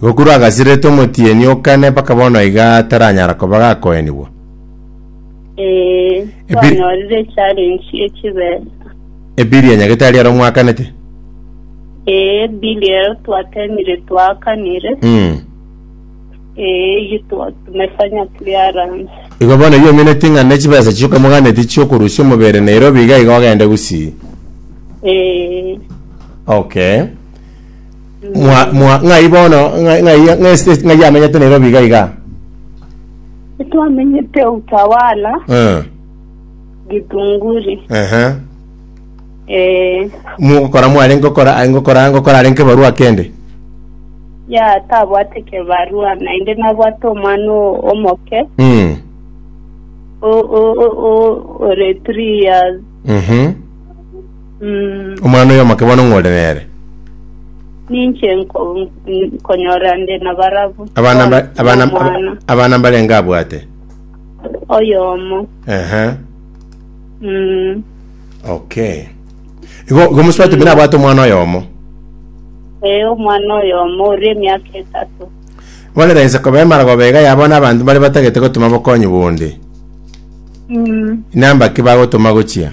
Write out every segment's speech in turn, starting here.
Gokuru agasirete omotienyi o kane mpaka bono iga taranyara koba gakoenigwa. Ee, Ebi- twanyorire echarensi y'echibesa. Ebili ya nyagetari aro mwakanete. Ee, bili ero twatemire twakanire. Mm. Ee, iyio twa- tumefanya clearance. Igo bono iga omineti ng'a nechibesa chioka moganeti chiokorusia omobere Nairobi iga iga ogende gusii. Ee, Okay. Mwa, mwa, ng'ai bono, ng'ai, ng'ai, ng'ai state ng'ai yamenyete Nairobi iga iga? Twamenyete Utawala, Eh, Githunguri. ehe. Eh, Mugokora mware ngokora, ngokora, ngokora are nkebarua kende. ya tabwate kebarua naende nabwate omwana o- omoke Mm. o- o- o- o- ore three years Mhm. Omwana oyo omoke bono ng'o ore nere? Ninche nko- nkonyora nde na barabwo. Abana mba- Bono abana nomwana abana mbarenge abwate? oyomo. Ehe. Mm. Okay. Igo igo mosubati buna abwate omwana oyomo. Ee, omwana oyomo oria emiaka etato. Bono raise koba emaragoba iga yabo na abanto bare batagete gotoma bokonyi bonde. Mm. Inamba ki bagotoma gochia?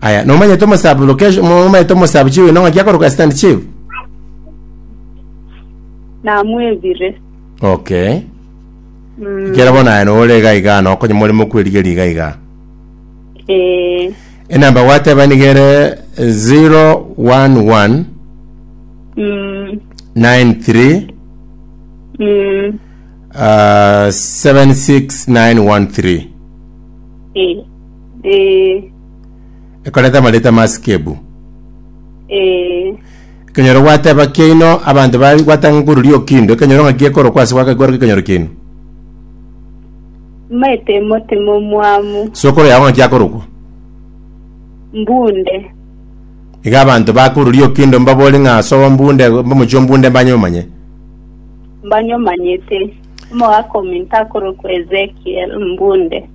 Aya, nomanyete omosabi location, nomanyete omosabi chiwi nong'a kiakoroka stand chiwi? namwebire Okay. Mm, Kera bono aya nore iga iga, nokonye more mokwerigeria iga iga. eh, Enamba gwateba niga ere 011 mm, 93 mm, uh, 76913. eh. Ee, Ekoreta amareta amaasikebu. ee, Ekenyoro gwateba kiaino abanto ba gwatanga koruria okindo, ekenyoro ng'aki ekorokwa ase gwaka gikoroka ekenyoro kiaino. maete motima omwamu, Sokoro yao ng'aki akorokwa. mbunde, Iga abanto bakoruria okindo mbabori ng'a ase ombunde omochie ombunde mbanye omanye. mbanyomanyete, omogaka ominto akorokwa Ezekiel, mbunde.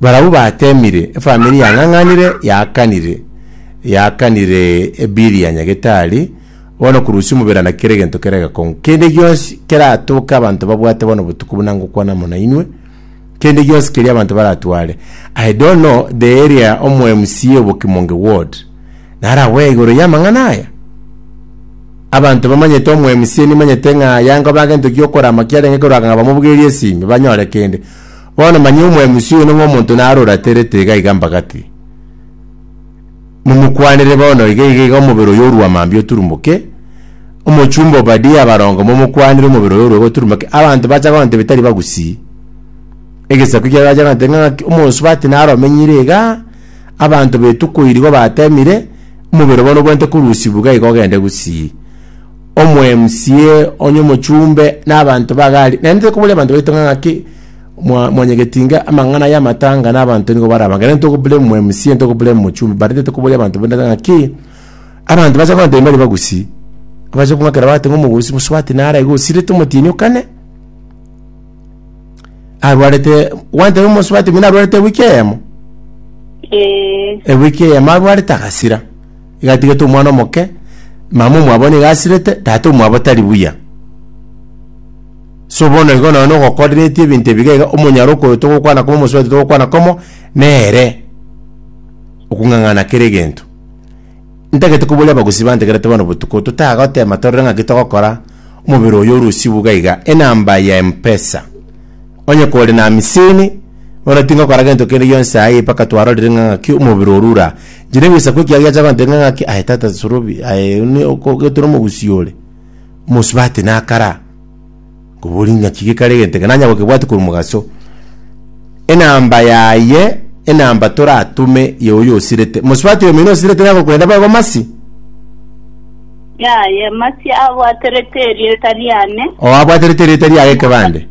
Barabwo bateemire, efamiri yang'ang'anire, yaakanire, yaakanire ebiiri ya nyagetari, bono kurusia omobere na kera egento kere egekong'u. Kende gionsi keratoke abanto babwate bono botuko buna ngokwana amo nainwe, kende gionsi keria abanto baratware. I don't know the area omo MCA obo Kimonge ward naragwe igoro y'amang'ana aya? Abanto bamanyete omo MCA nimanyete ng'a yanga obe agento gi'okorama kiarenge korwa ng'a bamobugerie esimi, banyore kende. Bono manyia omwemusi oyio ning'o omonto naro oraterete iga iga mbagati. Momokwanere bono iga iga iga omobere oyio orua mambia oturumoke, omochumba Obadia abaronge momokwanire omobere oyio orue goturumoke, abanto bacha kogenda tebia tari bagusii. Egesaku ekiaye bacha kogenda tebia ng'aki omonsi bati naro omenyire igaa, abanto betuko iri igo batemire, omobere bono obwenerete korusibwa iga iga ogende gusii. Omwemca onye omochumbe na abanto ba Gali, naende tokoboria abanto baito ng'a ng'aki mwa- mwanyegetinga amang'ana y'amatanga na abanto nigo barabange, naende tokoblame omwemca, ntokoblame omochumbe, barende tokoboria abanto bande ng'a ng'aki abanto bacha kogantebia mbare bagusii, bache kong'akera bagoteba ng'a omogosi bosubati nare iga osirete omotienyi okane. Arwarete, gwantebia omosubati buna arwarete ewiki eyemo? Ee. Ewiki eyemo arwarete agasira. Igatigete omwana omoke, mama omwabo nigo asirete, tata omwabo tari buya. So bono igo nonye nogokoreretie ebinto ebiga iga, omonyaro okoyo togokwana komo, omosubati togokwana komo, nere okong'ang'ana kera egento. Ntagete koboria abagusii bantegerete bono botuko, totagotema torore ng'aki togokora, omobere oyo ore osibu iga iga, enamba ya Mpesa. Onye kore na amisini, bono tingokora gento kende gionsi ayii mpaka twarorire ng'a ng'aki omobere oru ura. Inche negoisa kwa ekiago giacha gontebia ng'a ng'aki aye tata sorobi, aye ne- oko- gete nomogusii ore. Omosubati nakara. Kobori ng'aki gekare egento eke nanya gokebwatia korwa omogaso. Enamba yaye, enamba toratome y'oyo osirete. Mosubati oyomino osirete nere agokorenda bobe bomasi. Yaye, masi abwaterete erieta riane. Oo abwaterete erieta riaye ekebande.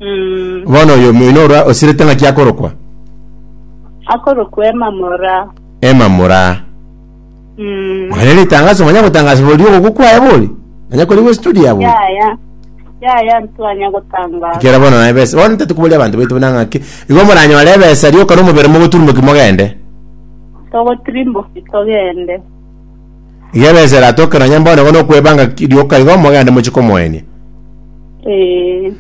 Mm. Bono oyomino orwa osirete ng'aki akorokwa? Akorokwa Emamora. Emamora. Mwana ritangaso manya gotangasa bori ogokwa kwaye bori. Manya kori gwe studio abo. yaya yaya ntwanya gotangaza Kera bono na ebesa. Bono ntete kubori abantu baitu buna ng'aki. Igo moranyore ebesa rioka nomobere mogoturmoki mogende. togotirimboki togende Iga ebesa eratoke nonya bono igo nokwebanga ki- rioka igo mogende mochi komoenia. ee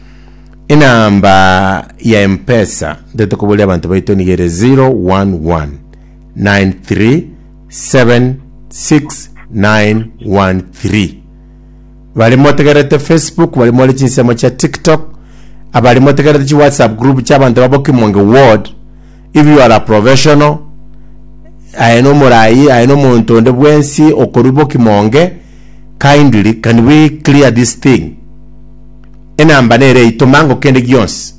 Enamba ya Mpesa ntete kubori abantu baitu niga ere 011. 9376913 Bari motegerete Facebook bari more chinsemo chia TikTok abari motegerete chi WhatsApp group chia abanto babo Kimonge ward if you are a professional aye no morayi aye no monto onde bwensi okorwa bo Kimonge kindly can we clear this thing enamba nere eyi toma ngo kende gionsi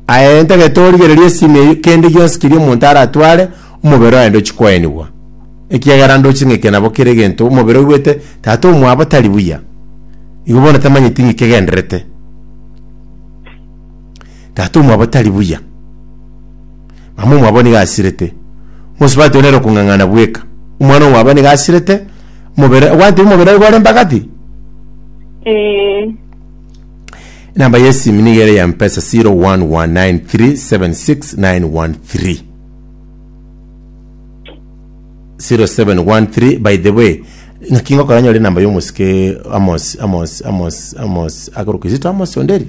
Aye ntagete origererie esimi eyio kende gionsi keria omonto aratware, omobere oye ndochi koenigwa, ekiagera ndochi ng'ike nabo kera egento omobere oigwete Tata omwabo tari buya. Igo bono tamanyeti ng'iki kegendererete. Tata omwabo tari buya. Mama omwabo nigo asirete. Mosubati one ere okong'ang'ana bweka. Omwana omwabo nigo asirete, omobere, ogwancha omobere oye gore mpaka ti? Ee. Enamba y'esimi nigo ere ya mpesa 01193769113. 0713 by the way ng'aki ngokora nyore enamba y'omosike amos amos amos amos akoro kizito amos onderi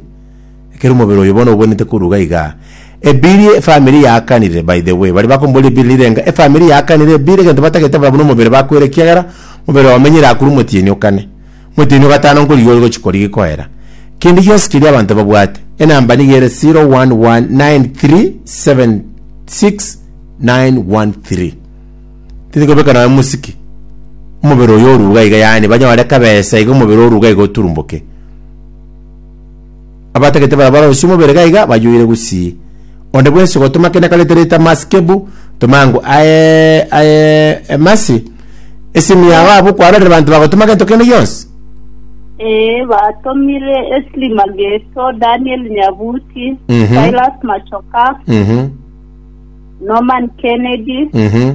ekero omobere oyo bono obwenerete koruga iga ebiri efamiri yaakanire by the way baria bakomboria ebiri rire enga efamiri yaakanire ebiri egento batagete barabwo na omobere bakoira ekiagera omobere omenyire akure omotienyi okane Omotienyi o gatano nkorigia ore gochia korigia koera kende gionsi keria abanto babwate. Enamba nigo ere 0119376913. Tindi kobeka nonya mosike omobere oyo oruga iga yaani banyore kabesa iga omobere oruga iga oturumboke. Abatagete baria barosie omobere gaiga bayoire gusii. Onde bwensi ogotoma kende karete reta masi kebu tomangu aye aye emasi. Esimi yao abwo kwarorire banto bagotoma gento kende gionsi. Ee, batomire Esli Mageto, Daniel Nyabuti, Mhm. Silas Machoka, Mhm. Norman Kennedy, Mhm.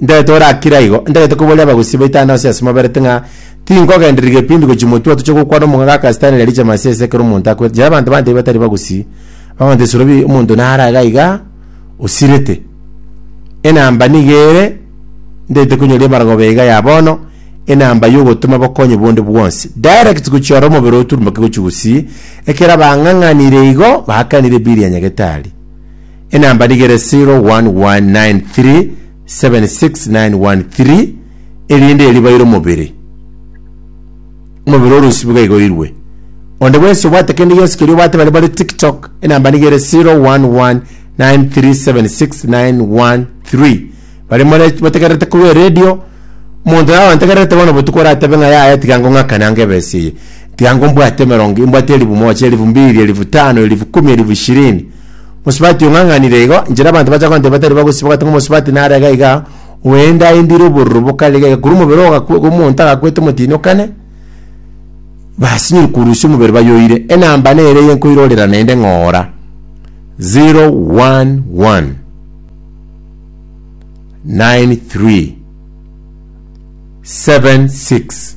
Ntaete ore akire aigo. Ntaete koboria abagusii baito aane ase asimoberete ng'a tinkogenderia gebindi gochia motwe toche gokwana omong'ake akasitani riari chemasi ase ekero omonto akwete. Jara abanto bante batari bagusii, bagoeta esuro bi omonto nare aiga aiga osirete. Enamba nigo ere, ntaete konyoria ebarabara be iga ya bono, enamba yogotoma bokonyi bonde bwonsi. Direct gochia oro omobere oturumboke gochia gusii, ekero abang'ang'anire igo baakanire bill ya nyagetari. Enamba nigere 01193769113 erinde eribaire omobere. Omobere orusi biga igoirwe. Onde bwensi obwate kende gionsi keria obwate bare bare tiktok enamba nigere 01193769113 bare more bategererete korwa eredio omonto naye ontegererete bono botuko oratabe ng'a yaya tiga ngong'akane ange ebesa eye tiga ngombwate emerongo imbwate elifu moja elifu mbiri elifu tano elifu kumi elifu ishirini Mosubati ong'ang'anire igo, inchera abanto bacha konteba batari bagosiba gotenga omosubati narega iga, oende aendire obororo bokarega iga, korwa omobere ogakwe- omonto agakwete omotinyokane, basinyiri korusia omobere bayoire. Enamba nere eye nkoirorera naende ng'ora, 011 93 76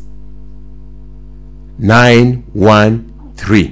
913.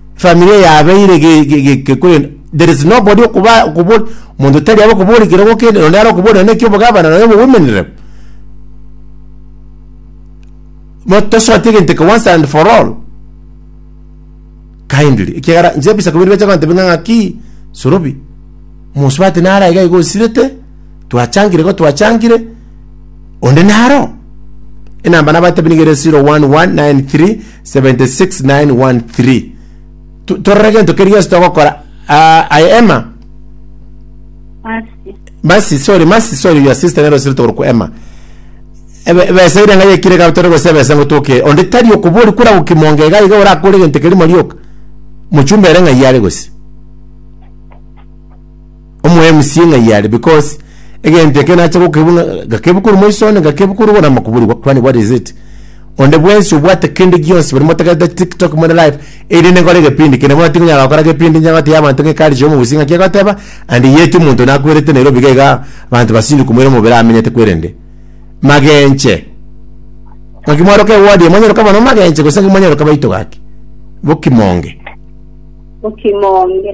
Familia yabeire ge- ge- ge- gekorenda there is nobody okuba okobori omonto tari abe okobori kero gokende nonye nare okobori nonye eki obogavana nonye obo women rep Bo- tosote egento eke once and for all kindly ekiagera inche ebisaku biri biacha kogotebia ng'a ng'aki sorobi omonto bati nare iga iga osirete twachangire igo twachangire onde naro enamba nabatebi nigo ere 0119376913 Tu- torore gento keri gionsi togokora Ah, aye emma Masi. masi sorry masi sorry your sister nero siri togorokwa emma Ebe- ebesa ire ng'ai ekire gabitore gose ebesa ngotoke onde tari okobori kora gokimonga iga iga orakore gento keri marioka mochumba ere ng'ai are gose Omoyo MC ng'ai yare because egento eke nache gokebu ng'a- gakebu korwa moiso one gakebu korwa igoro ama kobori kwani what is it onde bwensi obwate kende gionsi bari motagete tiktok more live erinde nkore egepindi kende bono tikonyara gokora gepindi inche gotebi abanto ng'a ekarichi y'omogusi ng'aki egoteba and yet omonto nakwerete Nairobi iga iga abanto basindu komoira omobere amenyete kwerende magenche ng'aki mwaroka ewodi eye mwanyeroka mono magenche gose ng'aki mwanyeroka baito gaki bokimonge Bokimonge.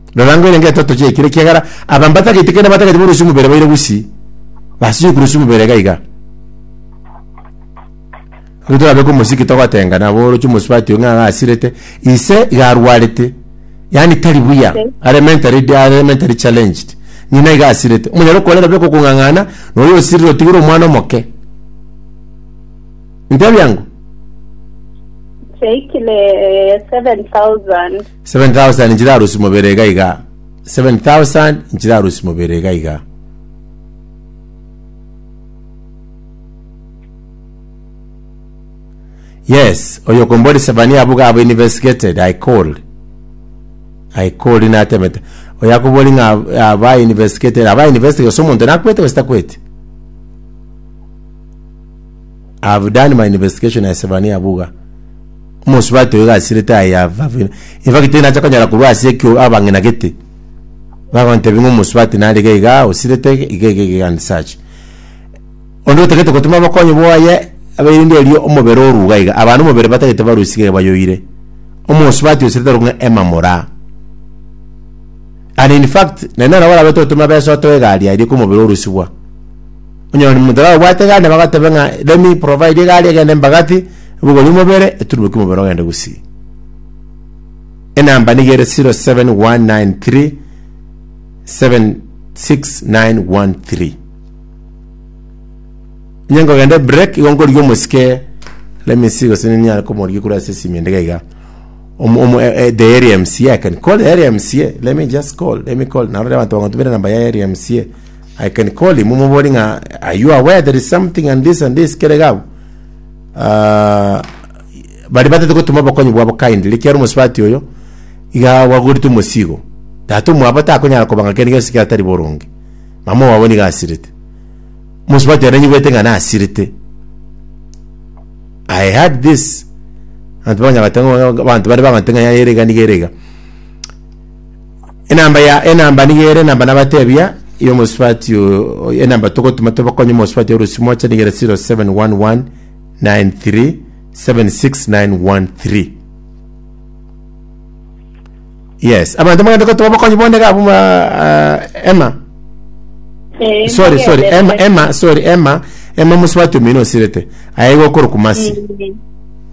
Rora ngwere ngetoto chiaikire, ekiagera aba mbatagete kera batagete borosie omobere baire gusii, basiche korosia omobere iga iga. Ri torabeke omosiki togotenga nabo oroche omosubati ng'a ng'a asirete, ise iga arwarete, yaani tari buya, are mentally, are mentally challenged. Ng'ina iga asirete. Omonyare okorera beka okong'ang'ana, na oyo osirire otigire omwana omoke. Intebia ng'o? Chiaikire eh, 7,000. 7,000 nchirarusia mobere iga iga, 7,000 nchirarusia mobere iga iga. Yes, oyo okomboria Sefania abuge abo investigated, I called. I called natemete. Oyo akobori ng'a aba investigated, aba investigated, gose omonto nakwete gose takwete. I have done my investigation ya Sevania Buga. Omosubati oyo gasirete I have, have in, in fact tinacha konyara korwa ase ekio abang'ina gete. Bagontebi ng'a omosubati narige iga osirete iga iga iga and such. Onde otagete gotuma bokonyi bwaye aberinde erio omobere oruga iga. Abana omobere batagete barusige bayoire. Omosubati osirete arokwa ng'a Emma Moraa. And in fact, naende nabo arabete gotuma besa otoe egari aria kwa omobere orusibwa. Onye ore nomonto tarabwate egari, nabo agateba ng'a let me provide egari egende embagati, ebogori omobere, eturubokie omobere ogende gusii. Enamba nigo ere 07193 76913. Onye nkogenda ebreak, igo nkorigia omosike let me see gose ninyare komorigia korwa ase esimi ende iga iga. Omo- omo- eh, eh, the area mca, I can call the area mca, let me just call, let me call, naro abanto bagotumera enamba ya area mca. I can call him mobori ng'a are you aware there is something and this and this kere gabo Ah, bari batete gotuma obokonyi bwabo kindly ekiaro omosubati oyo iga gwagorete omosigo tata omwabo takonyara kobanga kende gionsi ekero atari boronge mama owabo nigo asirete omosubati ere nanyigwete ng'a nasirete I had this abanto baganya goteba ng'a- abanto bare bagoteba ng'a yaya ere iga niga ere iga Enamba ya enamba niga ere enamba nabatebia ya omosubati o- o- enamba togotuma tobakonye omosubati ya orosi moche niga ere 0711 93 76913 yes abanto mogende gotoba obokonyi bonde iga abwo ba- ah, emma Eh, sorry sorry magende. emma emma sorry emma emma omosubati omino osirete aye iga okorokwa masi Mm.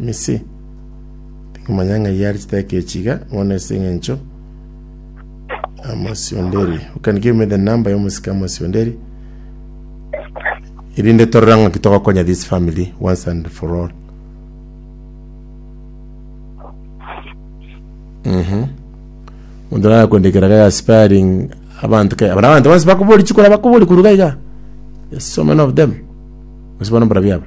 Misi. Tikomanya ng'ai are chiteka echi iga bono ase eng'encho amosi onde eri. You can give me the number y'omosika amosi onde eri erinde torore ng'a ki togokonya this family once and for all. Mhm. Omonto nara kwendekera ga aspiring abanto ke abana abanto bonsi bakobori chikora bakobori koruga iga. There's so many of them. Ase bono mborabia aba.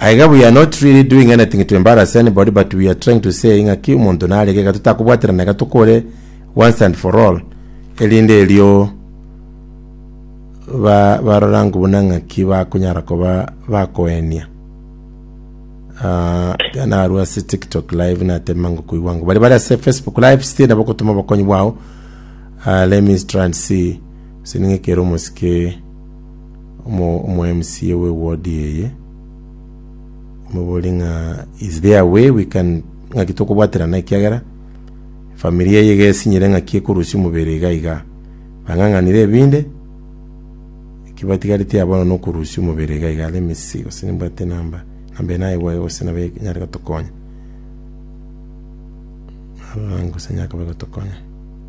Aiga we are not really doing anything to embarrass anybody but we are trying to say ng'aki omonto narege iga totakobwaterana iga tokore once and for all erinde erio ba barorangwe buna ng'aki bakonyara koba bakoenia Ah, iga narwo ase tiktok live natema ngokoigwa ng'o bari bare ase facebook live still nabo gotoma obokonyi bwao Ah, let me try and see sining'ekere omosike Omo-MCA we ward eye moborie ng'a is there a way we can ng'aki tokobwaterana ekiagera efamiri eye iga esinyire ng'aki ekorusia omobere iga iga. Bang'ang'anire ebinde, eki batigareti aye bono nokorusia omobere iga iga let me see gose nimbwate enamba, enamba eye nayebua iga gose nabo enyare gotokonya. Narora gose nigo akoba agotokonya.